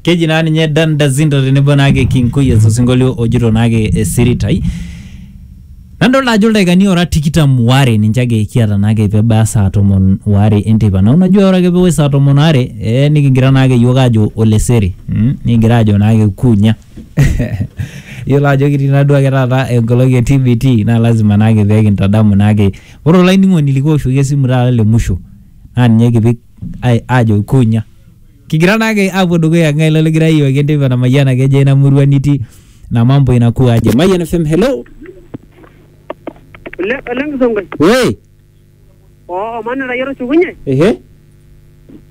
keji naa ninye Dan Dazinto tenebo naake King Koyes osinkolio ojito naake esiritai nadolta ajo ildaikani ora tikitam waare ninche ake kiata naake pebaya saa tomon waare enteipa nau najua ore ake pewosh saa tomon waare eh, nikigira naake yiok ajo olesere mm, nikigira ajo naake kunya yiolo ajo kitii naduo ake taata enkolong e TBT naa lazima naake pekintadamu naake ore olainining'oni likiwoshoki esimu taata le musho naa ninye kipik ai- aajo kunya kigira naake apuo dukuya ng'ae ilo ligira ayiewaki enteipa namayiana keje ina murua nitii na mambo inakuwa aje mayian fm hello Ole ole Nkisongoi. we Oo omani rayia tushukunye. ehe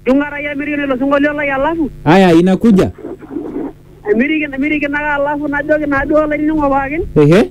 Jung'a rayia mirikino ilo sinkolio lai alafu. aya inakuja Mirikino mirikino ake alafu najoki naaduo olainining'o pookin. ehe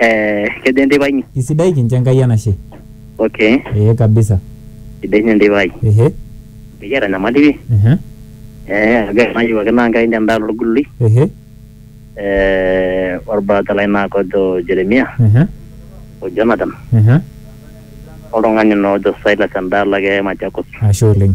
Eh, kejo enteipa inyi? Isidai kincho Enkai enashe. Okay. Ee kabisa. Sidai ninye enteipa ai. Ehe. Mikiata enyamali pi. Ehe. Eh, ore enayieu ake naa Enkai ninye endaa olgulului. Ehe. Eh, olbrata lai naa kojo Jeremia, Ehe. o Jonathan, Ehe. oltung'ani naa ojo Silas endaalo ake e Machakos. Ashe oleng.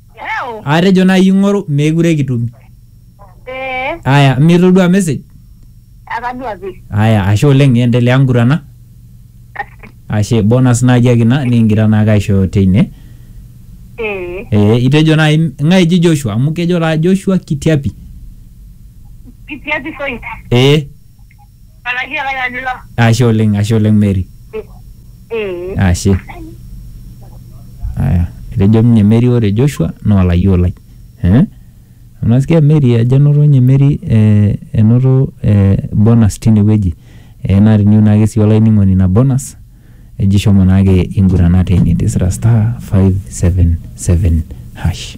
Eeu. Atejo nai ing'oru meekure kitum. Ee. Aya, mitodua message? Atadua pi. Aya, ashe oleng endelea ngurana. Ashe, bonus naaji ake ina nikingira naake aishooyo teine. Ee. Ee, itejo nai ng'ae eji Joshua amu kejo taa Joshua Kitiapi. Kitiapi Soit. Ee. Araki ake ajo ilo. Ashe oleng, ashe oleng Mary. Mm. Ashe. Aya, etejo ninye Mary ore Joshua naa olayioo lai. Eh? Unasikia Mary ajo enoto ninye Mary eh, enoto eh, bonus tine wueji. Eh, naa teniyieu naake sii olainining'oni ina bonus eji shomo naake ingurana teine tisira star five seven seven hash.